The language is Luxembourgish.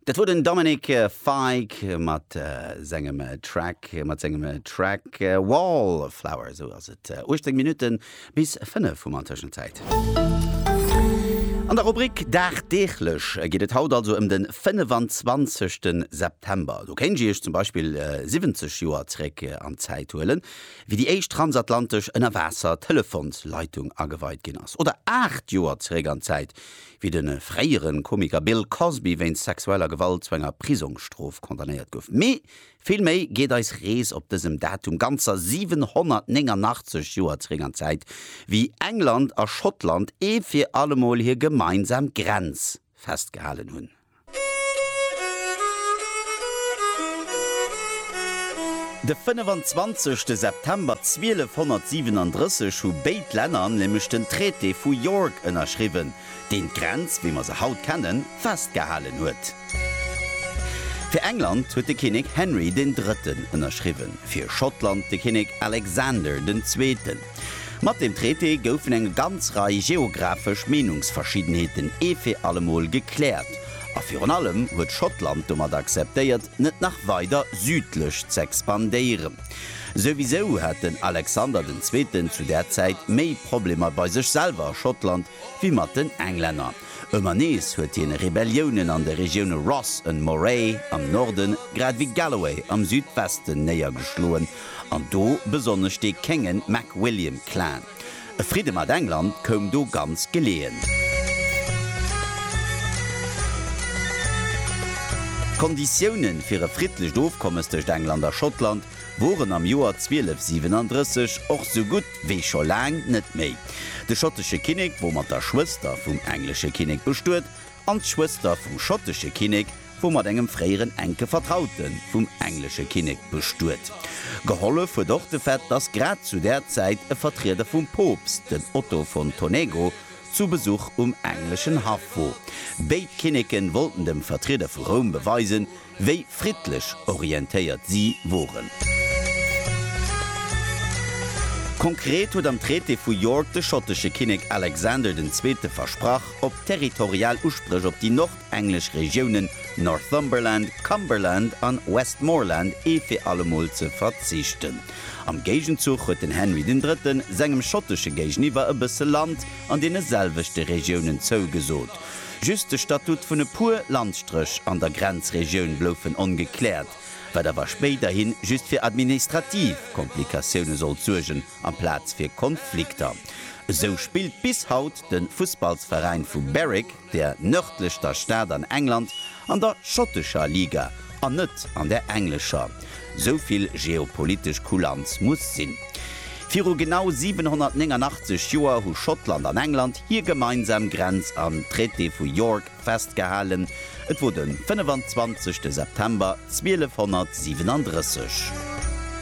Dat wor den Dominic Fike mat sengem Track, mat sengem Track Wallflower. Esou ass et 18 Minutten bis 5 hu mer an Tëschenzäit. An der Rubrik Dagdeeglech geet et haut also ëm den 25 ten September. Do kéint Iech zum Beispill 70 Joer zréck an d'Zäit huelen, wéi déi éischt transatlantesch Ënnerwaasser-Telefonsleitung ageweit ginn ass. Oder 8 Joer zréck an d'Zäit, Wéi de fréiere Komiker Bill Cosby wéinst sexueller Gewalt zu enger Prisongsstrof condamnéiert gouf. Mee vill méi geet eis Rees op dësem Datum ganzer 789 Joer zeréck an d'Zäit, wéi England a Schottland ee fir allemol hir gemeinsam Grenz festgehalen hunn. De 25 te September 1237 hu béid Länner nämlech den Traité vu York ënnerschriwwen, deen d'Grenz, wéi mer se haut kennen, festgehalen huet. Fir England huet de Kinnek Henry den Drëtten ënnerschriwwen, fir Schottland de Kinnek Alexander den Zweeten. Mat deem Traité goufen eng ganz Rei geographesch Meenungsverschiddenheeten ee fir allemol gekläert, a virun allem huet Schottland domat akzeptéiert, net nach weider südlech z'expandéieren. Souwisou hat den Alexander den Zweeten zu där Zäit méi Problemer bei sech selwer a Schottland wéi mat den Englänner. Ëmmer nees huet hien Rebelliounen an de Regioune Ross and Moray am Norden grad ewéi Galloway am Südwesten néiergeschloen An do besonnesch dee kéngen MacWilliam Clan. E Fridde mat England koum do ganz geleeën. D'Konditiounen fir e friddlecht Ofkommes tëscht England a Schottland woren am Joer 1237 och sou gutt wéi scho laang net méi. De schottesche Kinnek wor mat der Schwëster vum englesche Kinnek bestuet an d'Schwëster vum schottesche Kinnek, wor mat engem fréieren enke Vertraute vum englesche Kinnek bestuet. Gehollef huet och de Fait, datt grad zu där Zäit e Vertrieder vum Poopst, den Otto von Tonego, zu Besuch um engleschen Haff wor. Béid Kinneke wollten dem Vertrieder vu Roum beweisen, wéi friddlech orientéiert si woren. Konkret huet am Traité vu York de schottesche Kinnek Alexander den Zweete versprach, op territorial Uspréch op déi englesch Regiounen Northumberland, Cumberland an Westmorland ee fir allemol ze verzichten. Am Géigenzuch huet den Henry den Drëtten sengem schottesche Géigeniwwer e bësse Land an deene selwechte Regiounen zougesot. Just de Statut vun e puer Landstréch an der Grenzregioun bloufen ongekläert, wat awer spéiderhi just fir administrativ Komplikatioune sollt suergen amplaz fir Konflikter. Esou spillt bis haut de Fussballsveräin vu Berwick, der nërdlechster Stad an England, an der schottescher Liga an net an der englescher. Sou vill geopolitesch Kulanz muss sinn. Viru genau 789 Joer hu Schottland an England hir gemeinsam Grenz am Traité vu York festgehalen, et wor de 25. September 1237.